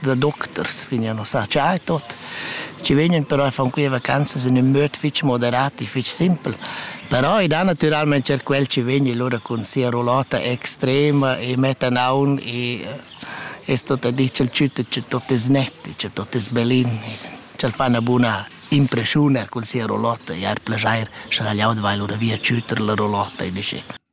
da doctors vegnan a sa tgei tot. Ci vegnan però a far quei vacanzas in ün möd fitg moderat e fitg simpel. Però ed ha naturalment er quel ci vegni lura cun sia rollata extrema e mettan aun e es tot a dir ch'el tschütta che tot es net e che tot es belin. Ch'el fa 'na buna impreschiun er cun sia rollata e ha er plajair, scha el jau vai lura via tschütter la rollata e dice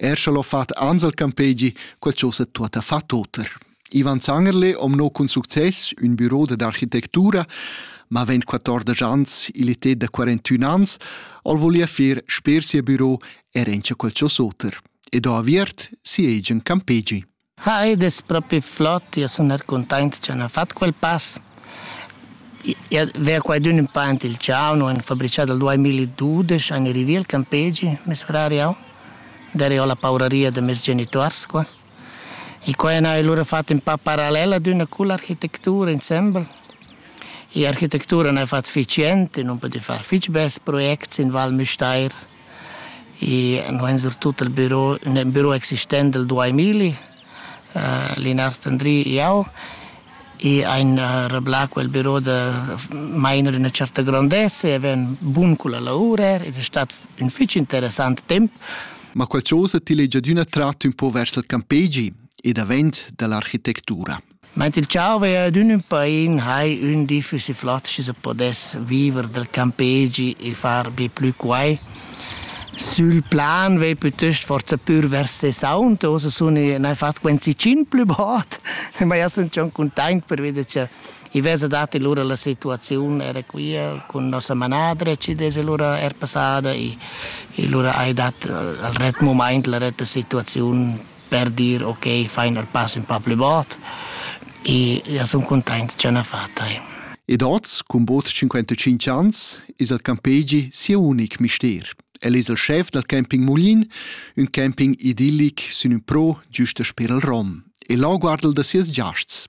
Er scha l'ho fat Ansel Campegi, quel chosa tuotta fa toter. Ivan Zangerle om no cun success ün büro d'architectura, ma vent 14 ans, il etet da 41 ans, ol volia fer sper sia büro er encha quel chosoter, ed ho aviert siegen Campegi. Ah, ed es propi flot, io sun er cuntaint cha n'ha fat quel pass. Io vea quaidün ün pa aint il ciao, no en fabrichà dal duemiladudesch an i rivi al campegi, mes frar e eu. Daré ho la pauraria da meis genituors qua. E qua n'haja lura fat ün pa paralel ad üna cull'architectura insembel. I'architectura n'haja fat fich jent e nun pudü far fich bels projects in Val Müstair. e no en surtut il biro nel biro existent del 2000 uh, Linard Andri iau e ein uh, reblà quel biro da mainer una certa grandezza e ven bun con la lavora ed è stato un fitch interessant temp. Ma quel chose ti legia d'una tratto un po' vers il campegi e davent dall'architettura. Meint il tscharvei ad ün ün pain hai ün di füss flatsch se podess viver del campegi e far be plü quai. Sül plan vei pütöst forsa pür vers se saunt, ossa sun i n'hai fat quenzi tschient plü bod, ma jau sun schon cuntaint pervi cha i vesa dat lura la situaziun era quia cun nossa manadra chi desa lura er passada e e lura hai dat al ret mumaint la retta situaziun per dir ok, fain el pass ün pa plü bod e ja sun cuntaint cha n'ha fat tai. Ed hoz, cun bod 55 ans, es il campegi sieu unic mister. El es il schef dal camping Mulin, ün camping idillic sün ün pro giüst per il Rom, e là guarda'l da sieus giasts.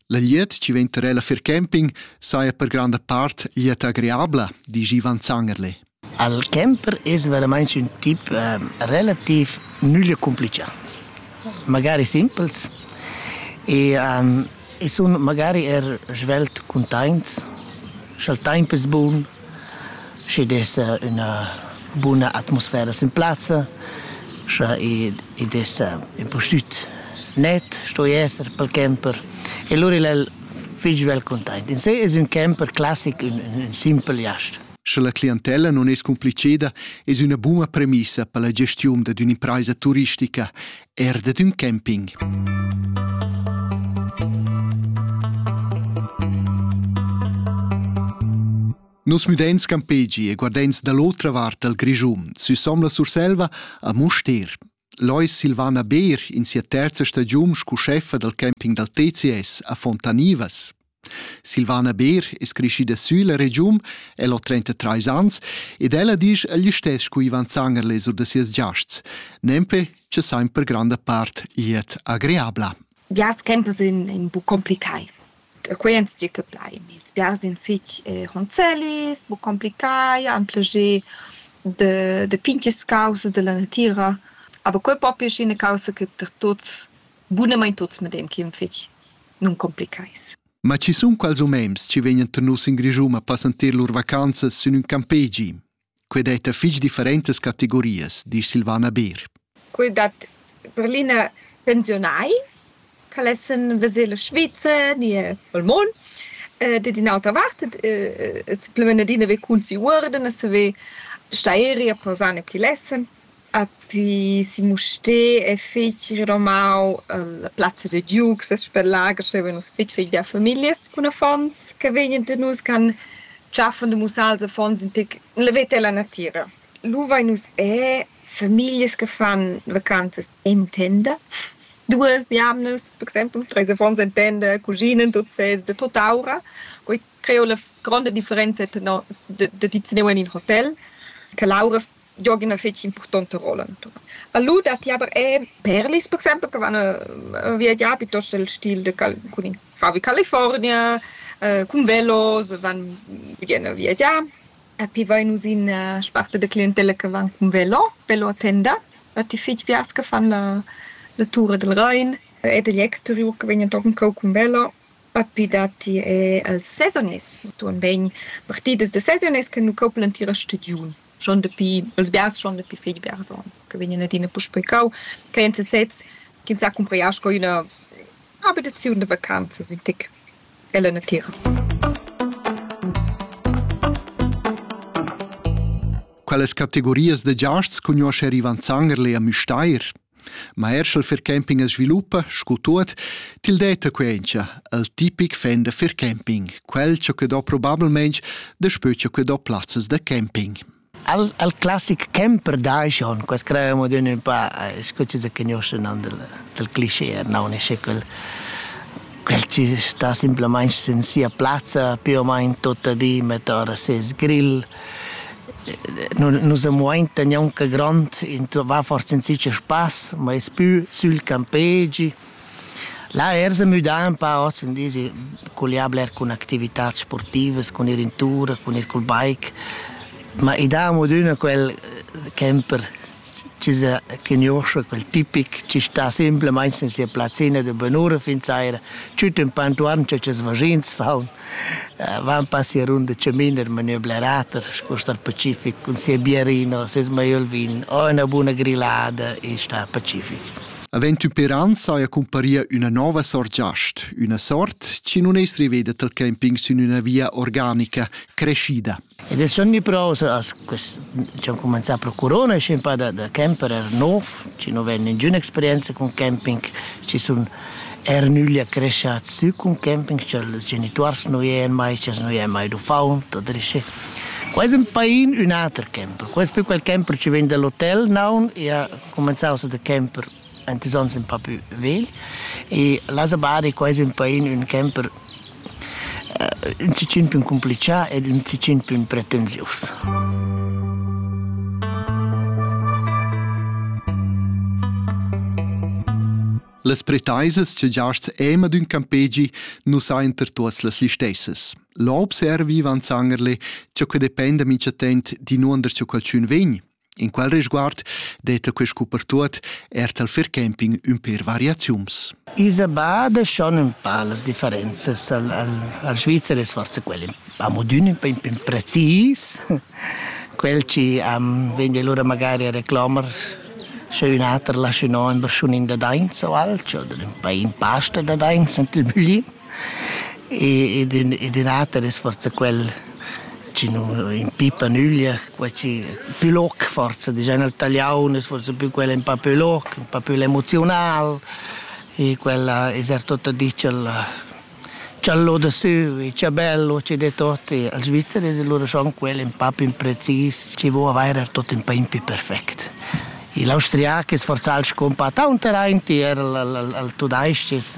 La glieud chi vegn tar ella fer camping saja per granda part glieud agreabla, disch Ivan Zangerle. Il camper es veramente un tip eh, relativ nullo complice, magari simpels e, um, e sun magari er svelt contents, scha'l temp es bun, schi dessa üna buna atmosfera sin plazza, scha i, i dessa impustüt net sto esser pel camper e lura il el fich svelt containt. In se es ün camper classic, ün, ün simpel jast. Sche la clientella non es cumpliceda, es üna buna premissa per la gestiun dad ün'impraisa turistica Er dad ün camping. Nus müdains campegi e guardains da l'otra vart dal Grischun, süsom la Surselva, a Mustér. Lois Silvana Beer in sia terza stagiun scu scheffa dal camping dal TCS a Fontanivas. Silvana Beer es creschida sülla regiun, el ho 33 ans ed ella disch egl istess cu Ivan Zangerle sur da sias giasts, nempe cha sain per granda part glied agreabla. Biars tempers sun ün po complicai. E quei ans di che plai. Ils biars sun fich ronzellis, bu complicai, han plascher da pincher scausas dalla natüra. Aber quei po pir sc'üna caussa che per tuots Bunamain tuts medem chi'm fich nuncomplichais. Ma chi sun quals umens chi vegnan tenuts in Grischun a passanter lur vacanzas sün ün campegi? Quai detta fich differentas categorias, disch Silvana Beer. Quel dat per l'ina pensiunai ch'al essan vezel a Svizzer ni a Valmon. dad in'auta vart e simpelmain adina ve cun si uorden e saver stairi a posar ne chi lessan. Apri si Mustér e feci renomau la plazza da giug, ses sper lager stevan nus fetg fetg bia famiglias cun affons che vegnan da nus, che han tschaffen da mussals affons in tec la veta e la natira. Lu vein nus er famiglias che fan vacanzas en tenda. Duas jamnas, per exempel, treis affons en tenda, cuginan tuts sezs da tutta aura. Quei creo la gronda differenza tenor da da di teneu en in hotel, che l'aura giog üna fich importanta rolla intuorn. A lu datti aber eir perlis per exaimpel che van viagià piuttost el stil de Cal cun in favi California, cun velos van vien a viagiar. E poi vain nus in sparte da clientella che van cun velo, velo a tenda. Dat i fich piars che fan la la tura dal Rain e dagl exteriur che vegnan tochen cou cun velo. E poi datti eir els sezonists, intuorn bain partidas da sezonists che nu couplan tier a stagiun. schon dapi els biars schon dapi fetg biars onns che vegnan adina puspei cau ch'ei en sesez ch'ins sa cumprar sco ina abitaziun da vacanzas in tec ella natira. Quelles categorias de giasts cugnosce Rivan Zangerle a Müstair? Ma er sch'el fircamping as sviluppa, scu tuot, til detta quencha, il tipic fan da fircamping, quel cha que do probablmaing daspö cha que do plazzas da camping. El, el classic camper dai schon, quas crevamo d'ün ün pa, scu chi se cugnuschen nan del, del cliché, non è schi quel Quel chi sta simplamaing sin sia plazza più o main tuot di mettà da ses grill. Nus am muainta gnanca grond, va forsa in sich a spass, ma es pü sül campegi. Là ers a müdà ün pa hoz in dis, culià bler cun activitats sportivas, cun ir in tur, cun ir cul bike. Ma i dà amo ad üna quel camper chi sa cugnuoscha quel tipic chi sta simplamaing sin sia plazzina da bunura fin saira, tschüt ün pa intuorn cha ches vaschins faun, van pas sia runda chamin in maniera blerater sco star pacific cun sia biarina, seis maiöl vin o üna buna grillada e star pacific. Avend ün per ans saja cumparia üna nouva sort giast, üna sort chi nun es riveda tal camping sün üna via organica, creschida. Ed els sun gnüpraus as quest diciam cumanzà pro Corona schi ün pa da da camperer nouv, chi nu vain ningüna experienza cun camping, chi sun eir nüglia creschats sü cun camping, cha'ls genituors nu ien mai, ch'els nu ien mai d'uffaunt, tuot riche. Qua es ün pain ün ater camper. Qua es più quel camper chi vegn da l'hotel, naun, e ha cumanzaus da camper ant is ons ün po pü vegl e la sabada qua es ün pain ün camper ün sichin pü cumplichà ed ün sichin pü pretensius. Las pretaisas che giasts ema d'ün campegi nu sainter tuots las listessas. Là observi Ivan Zangerle, ciò che dependa minchatent di nuonder cha qualchün vegn, In quel risguard detta quest cupertuot er tal fair camping ün per variaziuns. Isa bada schon un pa las differenzas al, al, al Svizzer es forse quel amo d'ün un po precis, quel ci am vegn lura magari a reclamar sche un ater lascia no in berschunin da dainz o alch oder un pa in pasta da dainz ent il bugli. E ed ün ed ün ater es forsa quel chi nu impipa nüglia, quel chi pü loc forsa dischan il taliaun es forsa pü quel ün pa pü loc, ün pa pü l'emoziunal e quella es er tot a dir ch'el ch'al loda sü e cha bello chi det ot e als Svizzer es lura schon quel ün pa ün precis chi vo avair er tot ün pa ün pü perfect. I l'austriac es forsa'l scumpà taunt aint e er il il il tudais-ch es